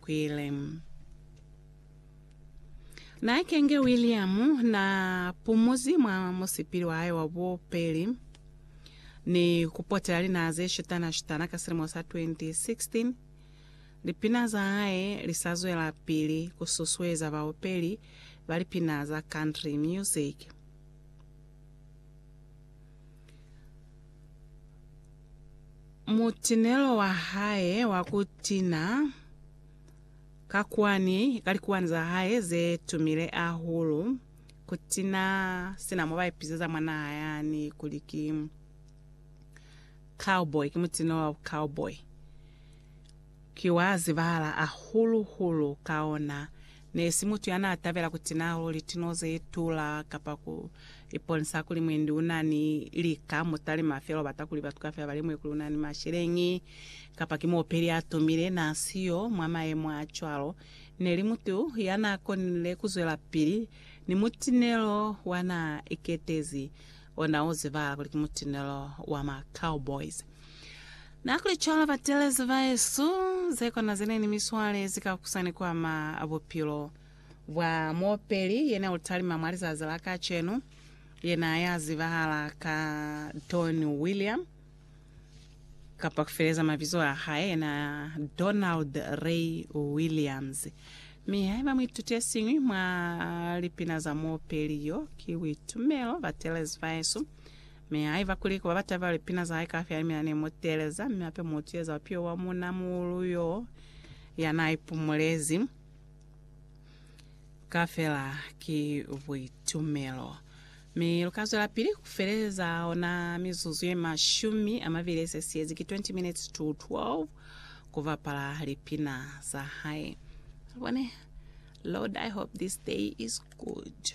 kwile. Na kenge William na pumuzi mwa musipili wa hae wa bupeli ni ku potela linaha ze shutana shutana ka silimo sa 2016. Lipina za hae li sa zwela pili ku susueza baupeli ba lipina za country music. Mutinelo wa hae wa ku tina ka kwani ka likuwani za hae ze tumile ahulu, ku tina sina mo ba ipizeza mwa naha yani kuli ki cowboy, ki mutinelo wa bu cowboy, ki wa zibahala ahulu-hulu ka ona. Ne si mutu ya n'a tabela ku tina luli tino ze tula kapa ku iponisa kuli mwendi u na ni lika. Mu talima fela u bata kuli batu kaufela ba lemuhe kuli u na ni masheleñi kapa ki muopeli ya tumile. N'a si yo mwa mayemo a cwalo. Ne li mutu ya n'a konile ku zwelapili ni mutinelo wa n'a iketezi. Ona u ziba kuli ki mutinelo wa ma cowboys. Na kuli cwalo batelezi baesu, ze kona zene ni miswale zi ka kusa ni kuama bupilo bwa muopeli yene u talima mwa lizazi la kacenu, yena ya zibahala ka Don William. kapa kufeleza mabizo a hae ena Donald Ray Williams. Mi haiba muituti yesiñwi mwa lipina za muopeli yo ki Boitumelo ba Teles Vaesu, mi haiba kuli kuba batabela lipina za hae kafya ni mina ne mu teeleza, mi hape mutu yeza upio wa munamuhulu yo yana ipumulezi kafela ki Boitumelo. Mi lu ka zwelapili ku feleza ona mizuzu ye mashumi a mabili ye se siyezi, ki 20 minutes to 12, ku bapala lipina za hae. Lubone, Lord, I hope this day is good.